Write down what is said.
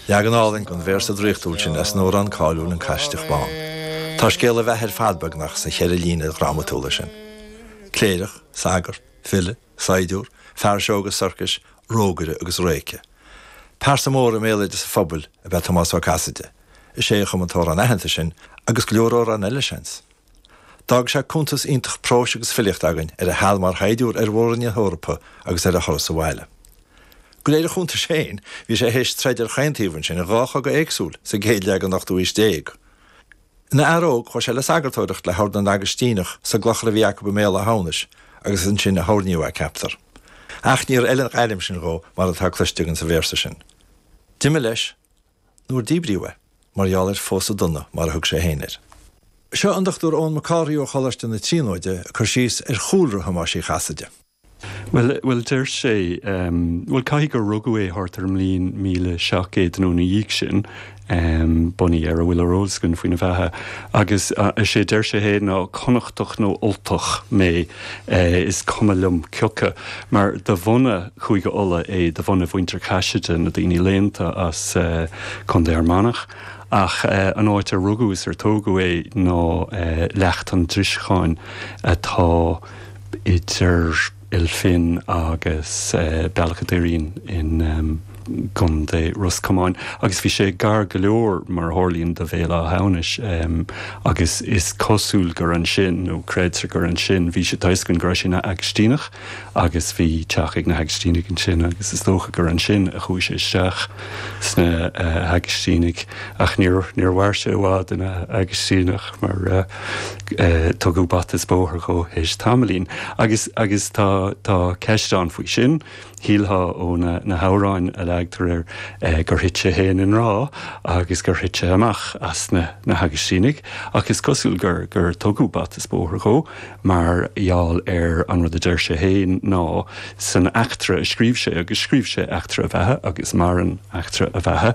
Leagan álainn den véarsa draíochtúil sin as an amhrán cáiliúil An Caisideach Bán. Tá scéal a bheatha ar fad beagnach sna cheithre líne dhrámatúla sin. Cléireach, sagart, file, saighdiúr, fear seó agus sorcais, rógaire agus réice. Pearsa mór i mbéaloideas an phobail ab ea Tomás Ó Casaide. Is é a chum an t-amhrán aitheanta sin, agus go leor amhrán eile, seans. D'fhág sé cuntas iontach próis agus filíochta againn ar a sheal mar shaighdiúir ar Mhór-Roinn na hEorpa agus ar a thuras abhaile. De réir a chuntais féin, bhí sé théis troid ar chaon taobh ansin in dhá chogadh éagsúil sa gcéad leath den ochtú haois déag. Ina fhear óg, chuaigh sé le sagartóireacht le hOrd na nAgaistíneach sa gclochar a bhí acu i mBéal Átha hAmhnais agus is ansin a hoirníodh é, ceaptar. Ach níor fheil an ghairm sin dhó mar atá cloiste againn sa véarsa sin. D'imigh leis. nuair díbríodh é, mar gheall ar 'phósadh dona' mar a thug sé féin air. Seo an Dr Eoin Mac Cárthaigh ó Choláiste na Tríonóide ag cur síos ar chúlra Thomáis Uí Chasaide. Bhuel, bhuel, deir sé, bhuel, caithfidh gur rugadh é thart ar an mbliain míle seacht gcéad nó ina dhiaidh sin, bunaithe ar a bhfuil ar eolas againn faoina bheatha, agus is é a deir sé féin ná, 'Connachtach nó Ultach mé. is cuma liom cioca, mar de bhunadh Chúige Uladh é, de bhunadh Mhuintir Chaiside, na daoine léannta as Condae Fhear Manach, ach an áit ar rugadh is ar tógadh é ná Leacht an Driseacháin atá idir Ail Finn agus Bealach a' Doirín in. gContae Ros Comáin, agus bhí sé gar go leor, mar a tharlaíonn, do Bhéal Átha hAmhnais, agus is cosúil gur ansin, nó creidtear gur ansin, bhí sé toisc go raibh sé ina Agaistíneach agus bhí teach ag na hAgaistínigh ansin agus is dócha gur ansin a chuaigh sé isteach sna hAgaistínigh ach níor mhair sé i bhfad ina Agaistíneach mar tugadh bata is bóthar dhó théis tamaillín. Agus agus tá tá ceist ann faoi sin. Shílfeá ó na hamhráin a leagtar air gur thit sé féin i ngrá agus gur thit sé amach as na hAgaistínigh, ach is cosúil gur tugadh bata 's bóthar dhó mar gheall ar an rud a deir sé féin ná san eachtra a scríobh sé, agus scríobh sé eachtra a bheatha agus maireann eachtra a bheatha,